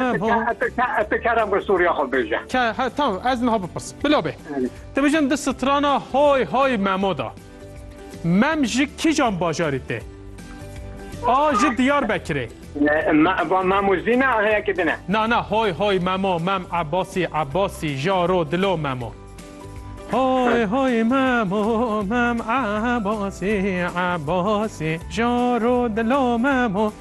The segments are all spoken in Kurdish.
Te ti kerem bi sûriya xwe bêje. Tamam ez niha bipirsim. Bila bê. Te bêjin di strana hay hay memo de. Mem ji kîjan bajarî tê? A ji Diyarbekirê. Memo zî ne heyekê din e. Na na hay hay memo mem Ebasî Ebasî jaro dilo memo. Hay hay memo mem Ebasî Ebasî jaro dilo memo.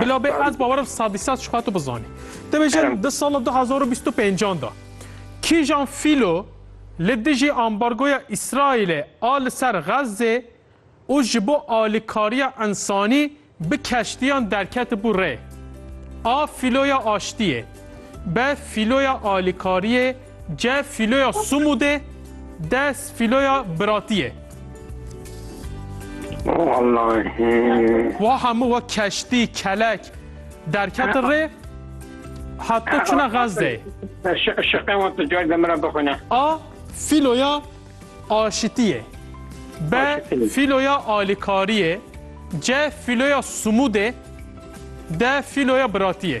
Bila bê ez bawerim sadî sad ji xwe tu bizanî. Te bêjin di sala du hezar û bîst û pêncan de kîjan fîlo li dijî ambargoya Îsraîlê a li ser Xezzê û ji bo alîkariya însanî bi keştiyan derketibû rê. A fîloya aştiyê be fîloya alîkariyê C. Fîloya Sumûdê D. Fîloya Biratiyê Wallahî Wa hemû wa keştî, kelek derketin rê hatta çûna Xezdeyê. Şiqê wan tu cayê min re bixwîne. A. Fîloya Aşitiyê B. Fîloya Alîkariyê C. Fîloya Sumûdê D. Fîloya Biratiyê